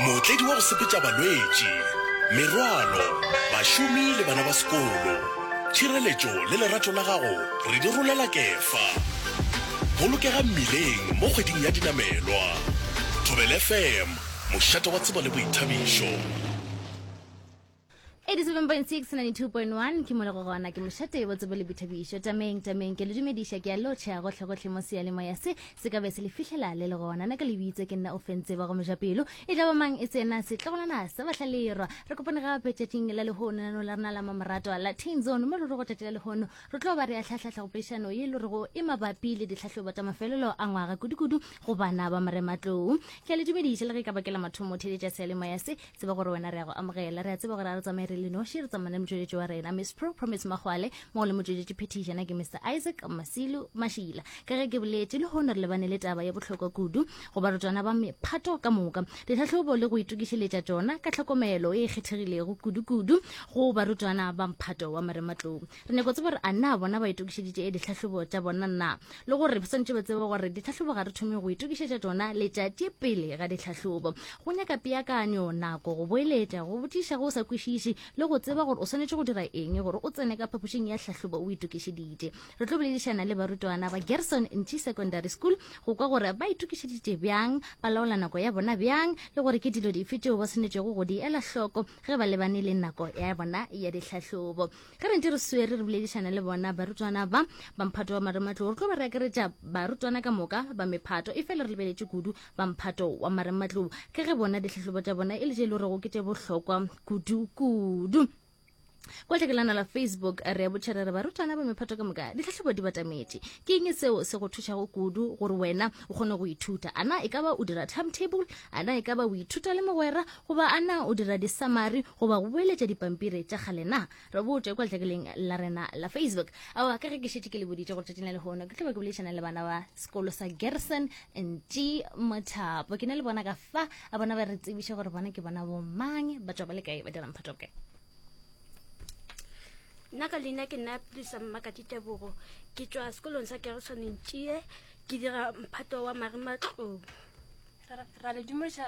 Mootledi wa go sepetša balwetši, merwalo, bašomi le bana ba sekolo. Tšhireletšo le lerato la gago re di rolela Kefa. Bolokega mmileng mo kgweding ya dinamelwa. Thobela FM, mošate wa tsebo le boithabišo. 87.692.1 ke molego gona ke mošate bo tsebo le boithabišo tameng tameng ke le dumediša ke a lotšha gotlhegotlhe mo seyalemoya se se ka be se le fihlela le le gona na ka le bitse ke nna o fentse ba go mojapelo e tla ba mang e tsena setlogolwana sa bahlalerwa re kopane gape tšatšing la lehono nano la rena la mamoratwa la tain zone mo re re go tšatši la lehono re tlo ba re ya tlhahlahla go pešano ye le rego e mabapi le ditlhahlobo tša mafelelo a ngwaga kudukudu go bana ba morematlou ke a le dumediša le ge e ka bakela mathomo theletša seyalemoya se tseba gore wena re ya go amogela re a tseba gore a re tsamaye re le noši re tsamane le motšweletši wa rena miss pro promise magwale mo le motšweletši phetišana ke mr isaac masilu mašila ka ge ke boletše le hono re lebane le taba ya bohlokwa kudu go barutwana ba mephato ka moka ditlhahlobo le go itokišeletša tšona ka tlhokomelo e kgethegilego kudu-kudu go barutwana ba mphato wa marematlou re nyako tseba gore a na bona ba itokišeditše ditlhahlobo tša bona na le gore ba swantše ba tsebe gore ditlhahlobo ga re thome go itokišetša tsona letšatši pele ga ditlhahlobo go nyaka peakanyo nako go boeletša go botšiša go o sa kwešiše le go tseba gore o swanetše go dira eng gore o tsene ka phapošing ya tlhahlobo o itokišeditše re tlo boledišana le barutwana ba gerson nchi secondary school go kwa gore ba itokišeditše bjang ba laola nako ya bona bjang le gore ke dilo dife tšeo ba swanetšego go di ela hloko ge ba lebane le nako ya bona ya ditlhahlobo Ge re ntše re swere re boledišana le bona, barutwana ba ba mphato wa marematlou, re tlo ba re akaretša barutwana ka moka ba mephato, efela re lebeletše kudu ba mphato wa marematlou ka ge bona dihlahlobo tša bona e le tše e le gorego ke tše bohlokwa kudu-kudu. Kwa letlhakelana la Facebook re a botšha re re barutwana ba mephato ka moka ditlhahlobo di batametše. Ke eng seo se go thušago kudu gore wena o kgone go ithuta? A na e ka ba o dira timetable? A na e ka ba o ithuta le mogwera? Goba a na o dira disamari goba go boeletša dipampiri tša kgale na? Re botše kwa letlakeleng la rena la Facebook. Aowa, ka ge ke šetše ke le boditše gore tšatšing la lehono ke tlo ba ke boledišana le bana ba sekolo sa Gerson Ntši Mothapo. Ke ne le bona ka fa a bona ba re tsebiše gore bona ke bona bo mang, ba tšwa ba le kae, ba dira mphato kae. nna ka leina ke nna prisa mmakati tebogo ke tswa sekolong sa gerison ntšie ke dira mphato wa marimatlong ra le dumediša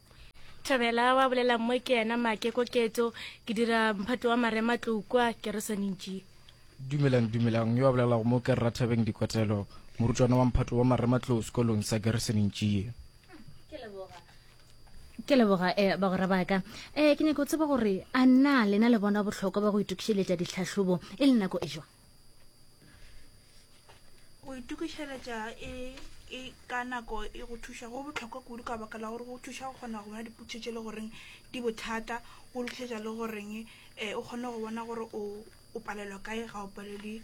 Thabela wa bolela mmoe ke yena Make Koketso, ke dira mphato wa Marematlou kwa Keresone Njie. Dumelang, dumelang. Yo a bolelago mo ke Rathabeng Dikwatelo, morutwana wa mphato wa Marematlou sekolong sa Keresone Njie. ke leboga eh, bagora baka eh, ke nyaka go tseba gore a na lena le bona bohlokwa ba go itokišeletša ditlhahlobo e le nako e jwa go itokišeletša e, e ka nako e go thuša go botlhokwa kudu ka baka la gore go thuša go kgona go bona dipotšišo tše le goreng di bothata go lutlhetša le goreng um eh, o kgone go bona gore o o palelwa kae ga o palelwe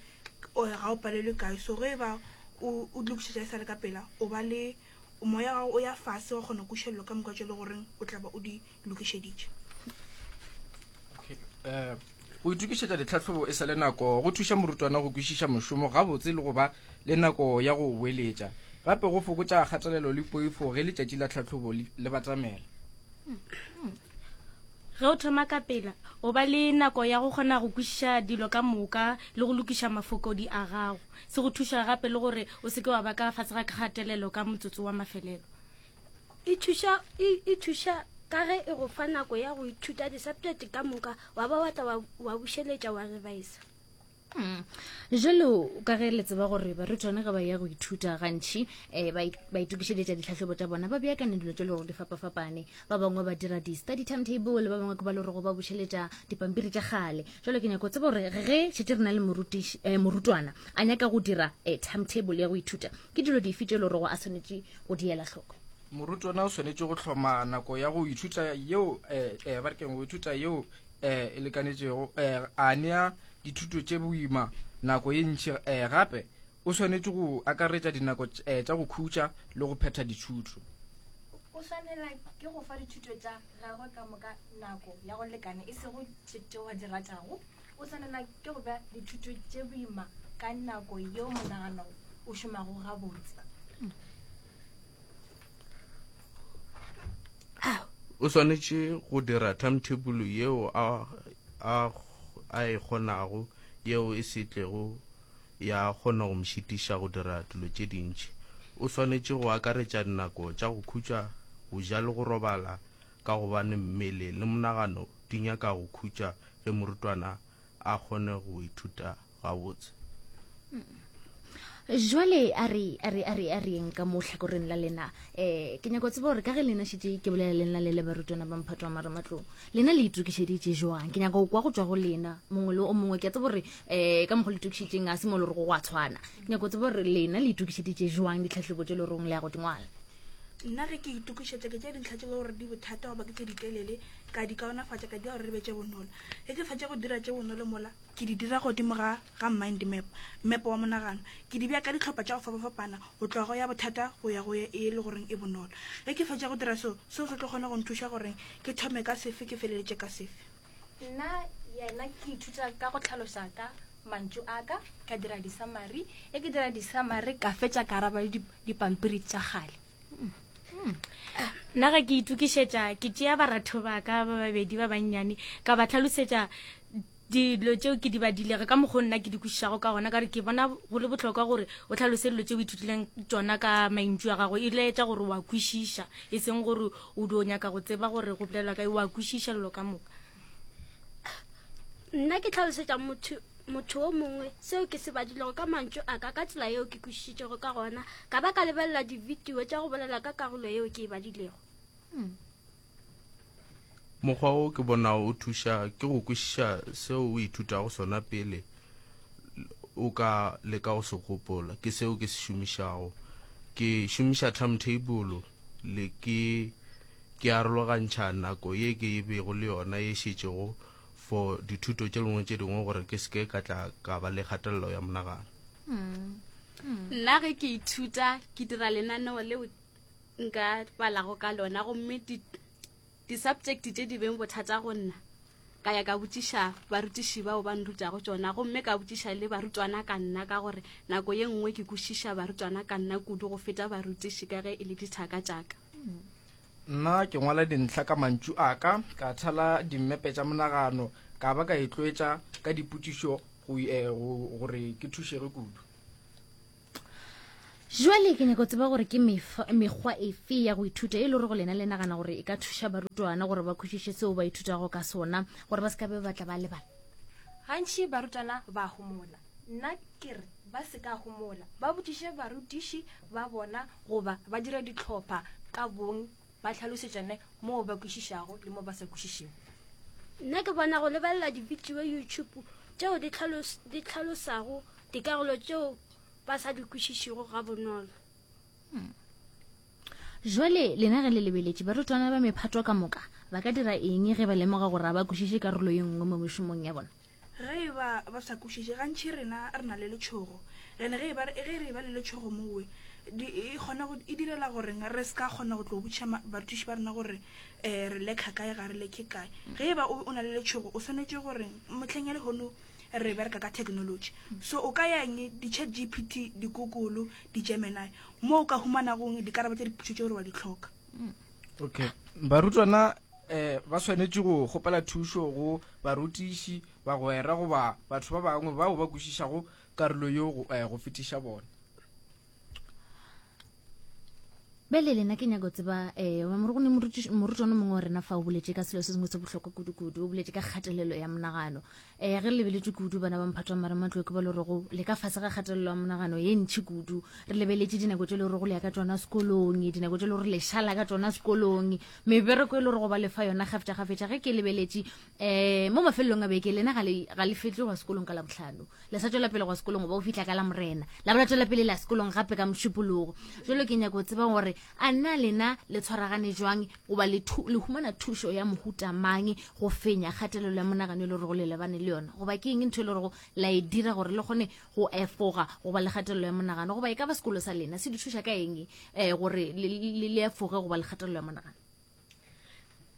ga o palelwe kae so ge e ba o lokišetša e sa le ka pela o ba le moya gago o ya fase wa kgona kušelelo ka moka tše le goreng o tlaba o di lokišeditše um go itokišetša ditlhahlobo e sa le nako go thuša morutwana go kwešiša mošomo gabotse le go ba le nako ya go boeletša gape go fokotša kgatelelo le poifo ge letšatši la tlhahlobo le batamela ge o thoma ka pela o ba le nako ya go kgona go kwešiša dilo ka moka le go lokiša mafokodi a gago se go thuša gape le gore o seke wa ba ka fase ga kgatelelo ka motsotso wa mafelelo e thuša e, e thuša ka ge e go fa nako ya go ithuta di-subject ka moka wa ba watla wa, wa bušeletša wa revisa Mm. jalo ka ge le tseba gore barutwana ge ba ya go ithuta gantšhi um ba it- ba itokišeletša ditlhahlobo tša bona ba beakane dilo tše le gore di fapafapane ba bangwe ba dira di-study timetable ba bangwe ke ba le gorego ba bušeletša dipampiri tša kgale jalo ke nyako tseba gore ge šetse re na le morutiš- eh, morutwana a nyaka go dira um timetable ya go ithuta Ke dilo dife tše lorogo a swanetše go di ela hloko? Morutwana o swanetše go hloma nako ya go ithuta yeo eh, eh, ba rekeng go ithuta yeo eh, e lekanetšego eh, a nea dithuto tše boima nako ye ntši eh, gape o swanetše go akaretša dinako eh, tša go khutša le go phetha dithuto o swanela ke go fa dithuto tša gagwe ka moka nako ya go lekana e sego tšetewa di ratago O swanelwa ke go ba dithuto tše boima ka nako yeo monagano o šomago gabotse. O swanetše go dira timetable yeo a, a, a e kgonago yeo e se tlego ya kgona go mšitiša go dira dilo tše dintši. O swanetše go akaretša dinako tša go khutša, go ja le go robala ka gobane mmele le monagano di nyaka go khutša ge morutwana a kgone go ithuta gabotse. Jwale a re a re a re a re eng ka mo hlakoreng la lena eh ke nyaka go tseba gore ka ge lena šitše ke bolela lena le le barutwana ba mphato wa marematlong lena le itokišeditše jwang ke nyaka go kwa go tswa go lena mongwe le o mongwe ke a tseba gore eh ka mokgwa le itokišeditseng a se mo le gore go a tshwana ke nyaka go tseba gore lena le itokišeditše jwang ditlhahlebo tše le goreng le ya go dingwala Nna ge ke itokišetša ke tšea dintlha tše le gore di bothata goba ke tše ditelele ka di kaonafatša ka dira gore di be tše bonolo. Ge ke fetša go dira tše bonolo mola ke di dira godimo ga ga mind map, mmepo wa monagano. Ke di bea ka dihlopha tša go fapafapana go tloga go ya bothata go ya go ye e le goreng e bonolo. Ge ke fetša go dira seo, seo se tlo kgona go nthuša gore ke thome ka sefe ke feleletše ka sefe. Nna yena ke ithuta ka go tlhaloša ka mantšu a ka ka dira disamari e ke dira disamari ka fetša ka araba le dipampiri tša gale hmm. nna ga ke itukišetša ke tšea baratho ba ka ba babedi ba bannyane ka ba tlhalosetša dilo tšeo ke di badilego ka mokgwa nna ke di kwešišago ka gona ka gore ke bona go le botlhokwa gore o tlhalose dilo tšeo ithutileng tsona ka mantšu a gago e laetša gore wa kwešiša e seng gore O dio nyaka go tseba gore go bolelwa ka wa kwešiša lelo ka moka. Nna ke tlhalosetša motho motho o mongwe seo ke se badilego ka mantšu a ka ka tsela yeo ke kwešišitšego ka gona ka ba ka lebelela dividio tša go bolela ka karolo yeo ke e badilego hmm. mokgwa o ke bonago o thuša ke go kwešiša seo o ithutago sona pele o ka leka go se gopola ke seo ke se šomišago ke šomiša timetable le ke ke arologantšha nako ye ke e bego le yona ye šetšego for dithuto tše lengwe tše dingwe gore ke seke ka tla ka ba le kgatelelo ya monagano nna ge ke ithuta ke dira lenaneo leo nka balago ka lona gomme Disaptšekte tše di beng bothata go nna, ka ya ka botšiša barutiši bao ba nrutago tšona gomme ka botšiša le barutwana ka nna ka gore nako ye nngwe ke kwešiša barutwana ka nna kudu go feta barutiši ka ge e le dithaka tša ka. Nna ke ngwala dintlha ka mantšu a ka, ka thala dimmepe tša monagano ka ba ka itlwaetša ka dipotšišo gore ke thušege kudu. jwale ke nyako tseba gore ke mekgwa efe ya go ithuta e le gore go lena le nagana gore e ka thuša barutwana gore ba khutšiše seo ba ithutago ka sona gore ba se ka be ba tla ba lebala gantši barutwana ba homola nna ke re ba se ka homola ba botšiše barutiši ba bona goba ba dira ditlhopha ka bong Ba hlalosetšane moo ba kwešišago le moo ba sa kwešišego. Nna ke bona go lebelela dibidio YouTube tšeo di tlhalos, di tlhalosago dikarolo tšeo ba sa di kwešišego ga bonolo. Hmm. Jwale lena ge le lebeletše barutwana ba mephato ka moka, ba ka dira eng ge ba lemoga gore ga ba kwešiše karolo ye nngwe mo mešomong ya bona? Ge e ba ba sa kwešiše, gantši rena re na le letšhogo. Gane ge e ba ge re e ba le letšhogo mowe, di, e kgona go, e direla gore re se ka kgona go tlo botšiša ma, barutiši ba rena gore eh, re lekha kae, ga re lekhe kae. Ge e ba o, o na le letšhogo, o swanetše gore mohleng ya lehono re bereka ka technology. So o ka yang di-chat GPT, di-Google, di-Gemini, mo o ka humanagong dikarabo tša dipotšišo tše gore wa di hloka. okay barutwana eh ba swanetše go gopela thušo go barutiši bagwera goba batho ba bangwe bao ba kwešišago karolo yo go eh, fetiša bona bele lena ke nyako tseba um go ne morutwana mongwe wa rena fa o boletse ka selo se sengwe se bohlokwa kudu-kudu o boletse ka kgatelelo ya monagano um ge re lebeletše kudu bana ba mphatho wa marematloo ke ba le rego le ka fase ga kgatelelo ya monagano ye ntšhi kudu re lebeletše dinako tše le rego le ya ka tsona sekolong dinako tše le gore le šala ka tsona sekolong mebereko e le rego ba lefa yona gafetša gafetša ge ke lebeletše um mo mafelelong a beke lena ga le fetle gwa sekolong ka labotlhano le sa tswela pele gwa sekolong goba o fitlha ka la morena la bola tswela pele la sekolong gape ka mošupologo jalo ke nyako tseba gore a nna lena le tshwaragane jwang goba le, thu, le humana thušo ya mohuta mang go fenya kgatelelo ya monagano e le gorego le lebane le yona goba ke eng ntho e le gorego la e dira gore le kgone go efoga goba le kgatelelo ya monagano goba e ka ba sekolo sa lena se di thuša ka eng um gore le, le, le efoge goba le kgatelelo ya monagano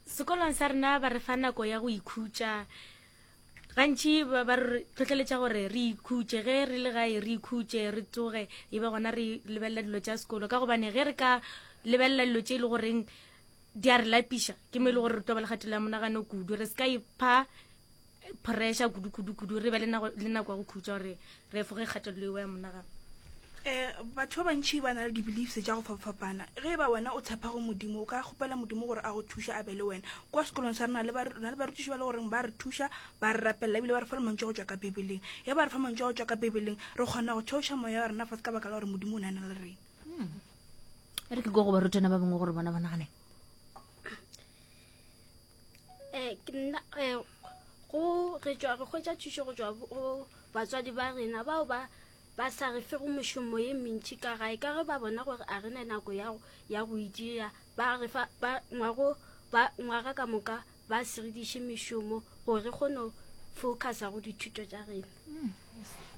sekolong sa rena ba re fa nako ya go ikhutša gantši ba ba re tlhotlheletša gore re ikhutše ge re le gae re ikhutše re tsoge e be gona re lebelela dilo tša sekolo ka gobane ge re ka lebelela dilo tše e le goreng di a re lapiša ke mo e le gore re tlo ba le kgatelo ya monagano kudu re se ka ipha pressure kudu-kudu-kudu re be le nako ya go khutša gore re efoge kgatelelo eo ya monagano um batho ba bantšhi ba na le di-beliefs tša go fapafapana ge e ba wena o tshepa go modimo o ka kgopela modimo gore a go thuša a be le wena kwa sekolong sa rena na le barutiši ba le goreng ba re thuša ba re rapelela ebile ba re fa le mantšwa go tšwa ka bibeleng ge ba re fa mantšwa go tšwa ka bibeleng re kgona go theoša moya wa rena fa se ka baka la gore modimo o ne a na le rena hmm. e re ke ko go barutwana ba bangwe gore bona ba nagane eh, nna, eh, go re tšwa re hwetša thušo go tšwa go batswadi ba rena bao ba ba sa re fego mošomo ye mentši ka gae ka ge ba bona gore a re ne nako ya go itia ba re fa ba ngwago ba ngwaga ka moka ba sirediše mešomo gore re kgone go focusa go dithuto tša rena hmm.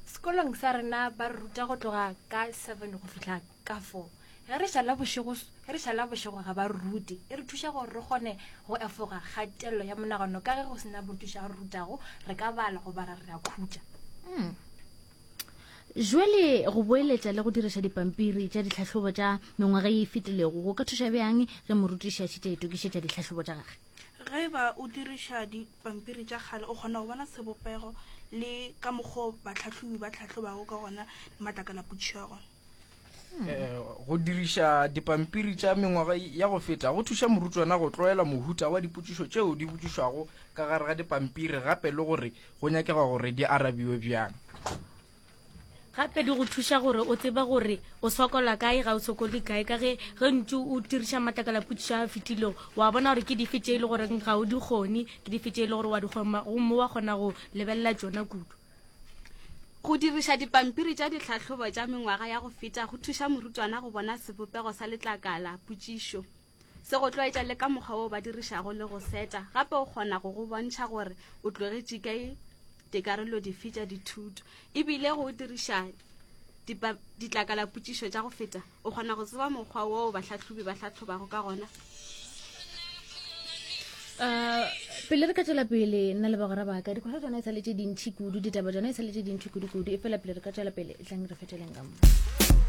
sekolong sa rena ba ruta go tloga ka seven go fitlha Kafoo, ge re šala bošego, ge re šala bošego ga ba rute, e re thuša gore re kgone go efoga kgatelelo ya monagano. Ka ge go se na morutiši a re rutago, re ka bala goba ra re ra khutša. Hmm. Jwale, go boeletša le go diriša dipampiri tša ditlhahlobo tša mengwaga ye e fetilego go ka thuša bjang ge morutiši a šetše a itokišetša ditlhahlobo tša gagwe? Ge e ba o diriša dipampiri tša kgale, o kgona go bona sebopego le ka mokgwa o batlhahlobi ba hlahlobago ka gona matlakala a putšego. Eh, go diriša dipampiri tša mengwaga ya go feta go thuša morutwana go tloela mohuta wa dipotšišo tšeo di botšišwago ka gare ga dipampiri gape le gore go nyakega gore di arabiwe bjang gape di go thuša gore o tseba gore o sokola kae ga o sokole kae ka ge ge ntse o diriša matlakala potšišo a fetilego wa bona gore ke dife tše e le goreng ga o di kgone ke dife tše e le gore wa di kgona gomme wa kgona go lebelela tsona kudu Go diriša dipampiri tša dihlahlobo tša mengwaga ya go feta go thuša morutwana go bona sebopego sa letlakala, potšišo. Se go tlwaetša le ka mokgwa woo ba dirišago le go seta, gape o kgona go go bontšha gore o tlogetše kae dikarolo dife tša dithuto. E bile go diriša ditlakala potšišo tša go feta O kgona go tseba mokgwa woo bahlahlobi ba hlahlobago ka gona? Uh, pele re ka tswela pele nna le bagora baka dikgwetlho tsona e sa le tse dintšhi kudu ditaba tsona e sa le tse dintšhi kudu-kudu e fela pele re ka tswela pele tlang re fetšeleng ka mo